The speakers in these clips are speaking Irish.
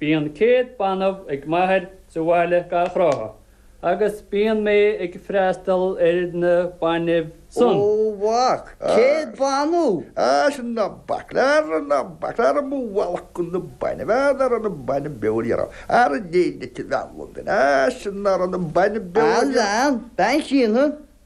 Bíonn céad banbh ag m'athair sa bhaile gach ráithe agus bíonn mé ag freastal ar na bainbh san. Ó a mhac! Céad banbh? Á sin ná bac le ara ná bac le ara mo bhealach go na bainbh á ná raibh na bainbh beo le ara ara déin aici bhean Londain á sin ná raibh na bainbh beo le ara. Á lean, bean Chiana,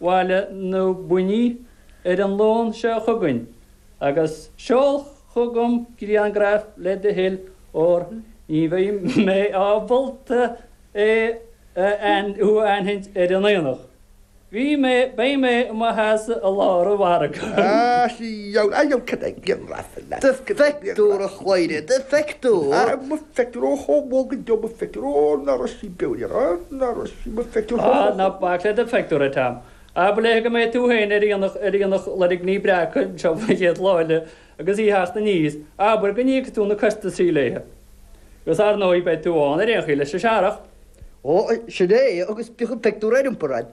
bhaile na Buinní ar an Luan seo chugainn agus seol chugam griangraf le do thoil óir ní bheidh mé ábalta thú a aithint ar an aonach. Bhí mé, beidh mé i mo sheasamh i lár an mhargaidh. Seol griangraf le do thoil. Pictiúr a chomhaireamh do phictiúr. Feictear Aodh chomh bog dubh a feictear ó na Roisín Beoir ar na Roisín mo phictiúr Hó hó hó. Ná bac le do phictiúr a Tom. Abair léithe go mbeidh tú féin ar aonach ar aonach Loirgní Breaca anseo faoin chéad lá eile agus í theacht aníos. Abair go n-íocfaidh tú na costasaí léithe. Agus ar ndóigh beidh tú ann ar aon chaoi leis an searrach. Ó, sin é é agus bíodh an pictiúr ar iompar a'd.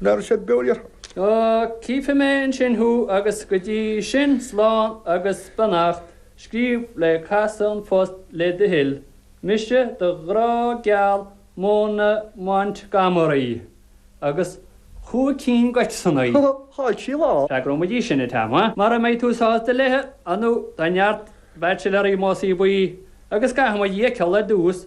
Ná raibh siad beo riarthar. Ó, cífidh mé ansin thú agus go dtí sin slán agus beannacht, scríobh le casadh an phost le do thoil, mise do ghrá geal Móna Montgomery. Agus chúig cinn de x-annaí. Chaill sí lá. Freagróimid í sin, a Tam, mara mbeidh tú sásta léithe, ar ndóigh tá neart baitsiléaraí i Másaí Buí agus caithfimid í a fheiceáil ar dtús.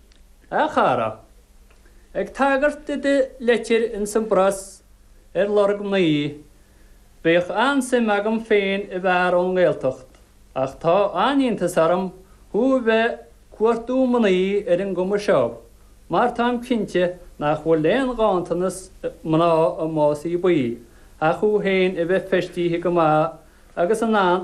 A chara. Ag tagairt do do leitir ins an bPreas ar lorg mnaoi, bheadh an-suim agam féin i bhfear ón nGaeltacht ach tá an-iontas orm thú a bheith ag cuartú mnaoi ar an gcuma seo mar táim cinnte nach bhfuil aon ghanntanas mná i Másaí Buí ach thú féin a bheith feistithe go maith agus in ann